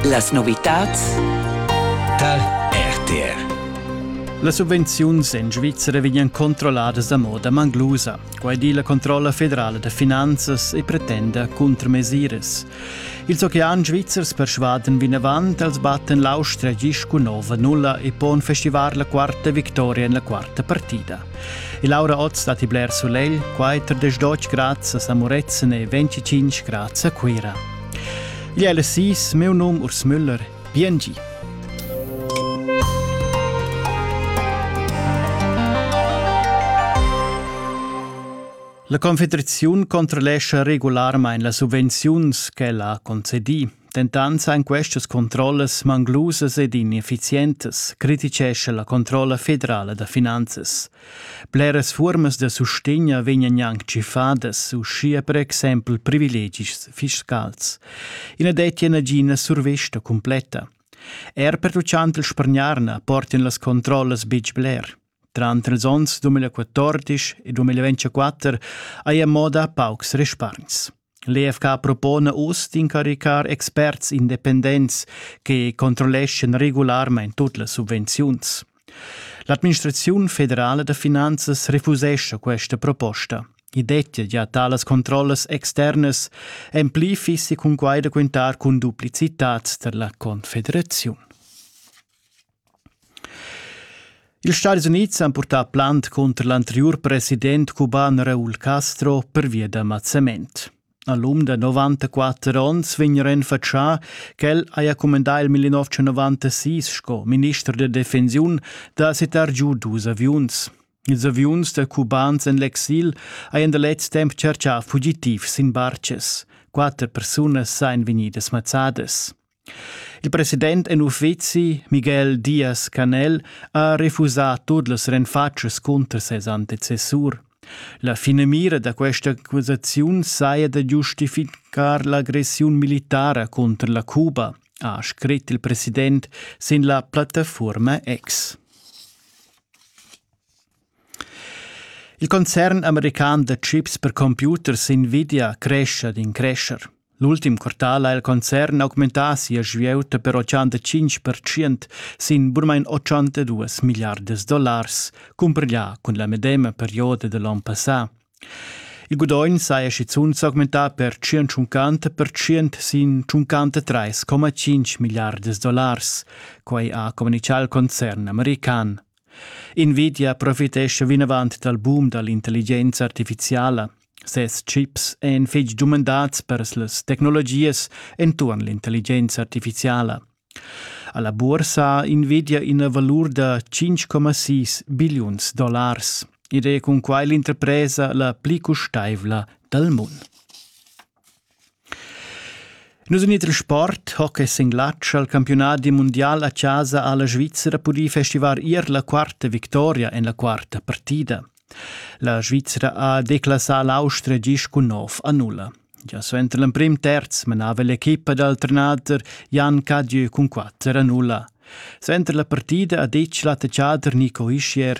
Las novitads tar RTR. Las subvenziuns en Svizzera vegnan controlladas da moda manglusa. Quai di la controlla federala da finanzas e pretenda cuntramesiras. Ils oceans svizzers persvaden vinavant als batten l'Austria gis cun nova nulla e pon festivar la quarta victoria en la quarta partida. E Laura Oz datti bler sulegl, quai tar 12 grads a Samuretzen e 25 grads a Cuira. Gli LSIs, meu num Urs Müller, biengi. La Confederaziun controllescha regularmain las subvenziuns ch'ella ha concedì. Dentant san questas controllas manglusas ed ineffizientas, criticescha la controlla federala da finanzas. Bleras fuormas da sustegn vegnan gnanc tschiffadas, uschia per exempel privilegis fiscals. I na dettia nagina survesta cumpletta. Er per tuccant il spargnarna portin las controllas betg bler. Tranter ils onns 2014 e 2024 haja moda paucs respargns. L'EFK propona uss d'incaricar experts independents che controlleschan regularmain tut las subvenziuns. L'administraziun federala da finanzas refusescha questa proposta. I dettia gia talas controllas externas, en pli fissi cun quai da quintar cun duplicitads tar la Confederaziun. Ils Stadis Unids han purtà plant cunter l'anteriur president cuban Raúl Castro pervia da mazzament. A l'um da 94 onns vegn renfatschà ch'el haja cumandà il 1996 sco minister da defensiun da sittar giu dus aviuns. Ils aviuns da cubans en l'exil hajan da lez temp tschertgà fugitivs sin bartgas. Quatter persunas sajan vegnidas mazzadas. Il president en uffeci, Miguel Diaz-Canel, ha refusà tut las renfatschas cunter ses antecessur. La finamira da questa accusaziun saja da giustificar l'agressiun militara cunter la Cuba, ha scrit il president sin la plattaforma X. Il concern american da chips per computers Nvidia crescha d'in crescher. L'ultim quartal ha il concern augmentà sia svieuta per 85% sin burmain 82 milliardas dollars, cumpiglià cun la medema perioda da l'onn passà. Il gudogn saja schizunt s'augmentà per 150% sin 53,5 milliardas dollars. Quai ha communitgà il concern american. Nvidia profitescha vinavant dal boom da l'intelligenza artificiala. Ses chips èn fitg dumandats per las tecnologias enturn l'intelligenza artificiala. Alla bursa invidia ina valur da 5,6 billiuns dollars ed è cun quai l'interpresa la pli custaivla dal mund. Nus in iter sport, hockey singlatsch al campiunadi mundial a chasa ha la Svizzera pudì festivar ier la quarta victoria en la quarta partida. La Svizzera ha declassà l'Austria gist cun nov a nulla. Gia suenter l'emprim terz menava l'equipa dal trenader Jan Cadieu cun quatter a nulla. Suenter la partida ha detg l'attaccader Nico Ischier